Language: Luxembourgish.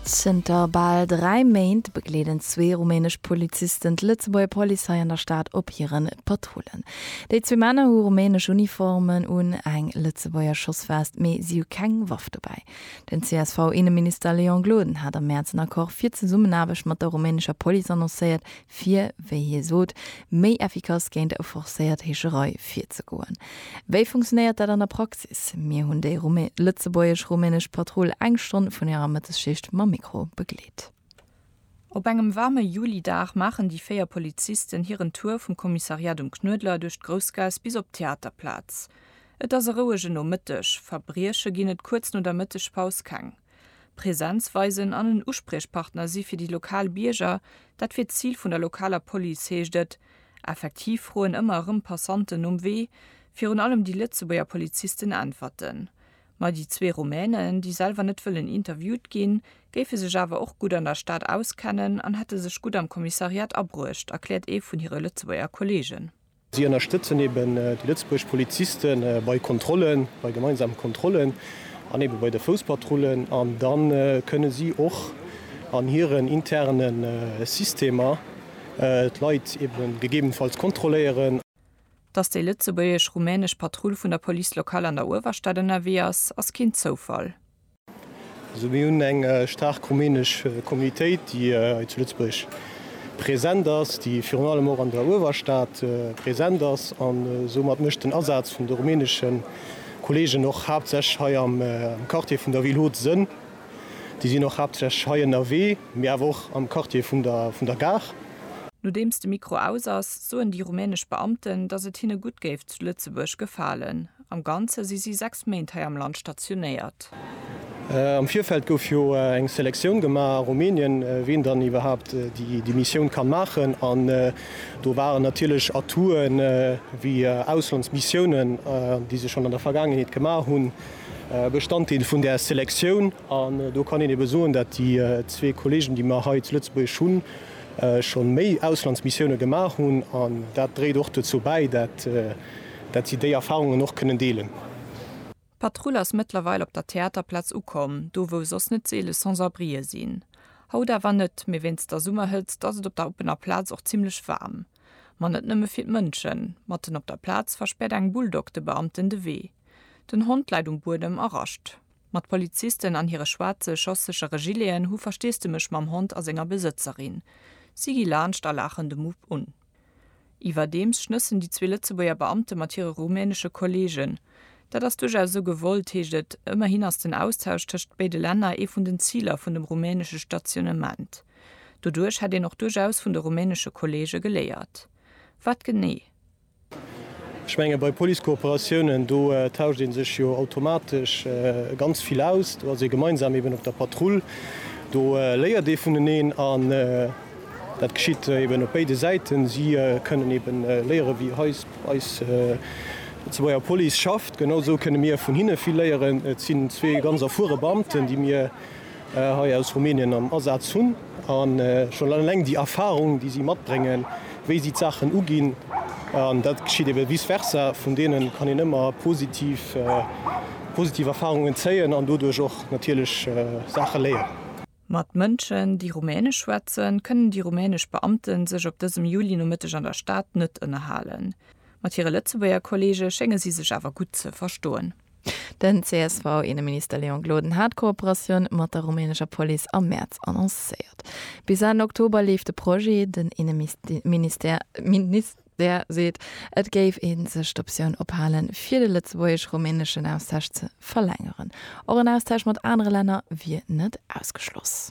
Zënter bal dräi Méint begleeden zwee rumänesch Polizisten d'Lëtzebuerger Police an der Stad op hire Patrullen. Déi zwee Männer hu rumänesch Uniformen un, eng Lëtzebuerger Schossvest, mee si hu keng Waff dobäi. Den CSV-Inneminister Léon Gloden hat am Mäerz en Accord fir d'Zesummenaarbecht mat der rumänescher Police annoncéiert, fir, wéi hie sot, méi effikass géint e forcéiert Heescherei virzegoen. Wéi funktionéiert dat an der Praxis? Mir hunn déi lëtzebuergesch-rumänesch Patrull eng Stonn vun hirer Mëttesschicht mam Mikro begleet. Op engem waarme Julidag maachen déi véier Polizisten hiren Tour vum Kommissariat um Knuedler duerch d'Groussgaass bis op d'Theaterplaz. Et ass e rouege Nomëtteg, Verbrieche ginn et kuerz no der Mëttegpaus keng. Präsenz weisen an en Uspriechpartner si fir déi lokal Bierger, dat wier d'Zil vun der lokaler Police, heescht et. Effektiv froen ëmmer erëm Passanten nom Wee. Virun allem déi Lëtzebuerger Polizisten äntwerten. Ma déi zwee Rumänen, déi selwer net wëllen interviewt ginn, géife sech awer och gutt an der Stad auskennen an hätte sech gutt am Kommissariat abruecht, erkläert ee vun hire Lëtzebuerger Kolleegen. Si ënnerstëtzen eben déi lëtzebuerg Poliziste bei Kontrollen, bei gemeinsame Kontrollen an eben bei de Fouspatrullen. An da kënne si och an hiren interne Systemer d'Leit eben gegebenfalls kontrolléieren. Dass déi lëtzebuergesch-rumänesch Patrull vun der Police locale an der Uewerstad ënnerwee ass, ass keen Zoufall. Also mir hunn eng staark rumänesch Communautéit, déi hei zu Lëtzebuerg present ass, déi virun allem och an der Uewerstad present ass. An soumat mécht den Asaz vun de rumänesche Kolleegen och haaptsächlech hei am Quartier vun der Ville Haute Sënn. Déi sinn och haaptsächlech hei ënnerwee, mee awer och am Quartier vun der Gare. Nodeems de Mikro aus ass, soen déi rumänesch Beamten, datt et hinne gutt géif zu Lëtzebuerg gefalen. Am Ganze si si sechs Méint hei am Land stationéiert. Am Virfeld gouf jo eng Selektioun gemaach a Rumänien, wien dann iwwerhaapt déi Missioun kann maachen. An do waren natierlech Atouten, wéi Auslandsmissiounen, déi se schonn an der Vergaangenheet gemaach hunn, Bestanddeel vun där Selektioun. An do kann een ebe soen, datt déi zwee Kollegen, déi mer hei zu Lëtzebuerg hunn, scho méi Auslandsmissioune gemaach hunn. An dat dréit och dozou bäi, dat dat si déi Erfarungen och kënnen deelen. D'Patrull ass mëttlerweil op der Theaterplaz ukomm, do wou soss net seele Sans-abrien sinn. Haut awer net, mee wéinst der Summerhëtzt ass et op der oppener Plaz och zimmlech waarm. Ma net nëmme fir d'Mënschen. Matten op der Plaz verspäert eng Bulldog de Beamten de Wee. Den Hond läit um Buedem a rascht. Ma d'Polizisten an hire schwaarze, schosssechere Gileten hu Versteesdemech mam Hond a senger Besëtzerin. Si gi laanscht a laachen de Mupp un. Iwwerdeems schnëssen déi zwee Lëtzebuerger Beamte mat hire rumänesche Kolleegen. Dat ass duerchaus esou gewollt, heescht et. Ëmmerhin ass den Austausch tëscht béide Länner ee vun den Ziler vun dem rumänesche Stationnement. Doduerch hätt een och duerchaus vun de rumänesche Kolleege geléiert. Wat genee? Ech menge bei Police-Kooperatiounen, do tauscht ee sech jo automatesch ganz vill aus. Do ass ee gemeinsam eeben op der Patrull. Do léiert ee vuneneen. Dat geschitt eben op béide Säiten. Si kënnen eben léieren, wéi eis eis lëtzebuerger Police schafft. Genau esou kënne mir vun hinne vill léieren. Et sinn zwee ganz erfuere Beamten, déi mir hei aus Rumänien am Asaz hunn. A schonn eleng déi Erfarung, déi si matbréngen, wéi si d'Saachen uginn, an dat geschitt eben vice versa, vun deene kann een ëmmer positiv positiv Erfarungen zéien an doduerch och natierlech Saache léieren. Mat Mënschen, déi Rumänesch schwätzen, kënnen déi rumänesch Beamte sech op dësem Juli-Nomëtteg an der Stad net ënnerhalen. Mat hire Lëtzebuerger Kolleege schénge si sech awer gutt ze verstoen. Den CSV-Inneminister Leon Gloden hat d'Kooperatioun mat der rumänescher Police am Mäerz annoncéiert. Bis Enn Oktober leeft de Projet. Den Inneministère Där seet, et géif ee sech d'Optioun ophalen, fir de lëtzebuergesch-rumäneschen Austausch ze verlängeren. Och en Austausch mat anere Länner wier net ausgeschloss.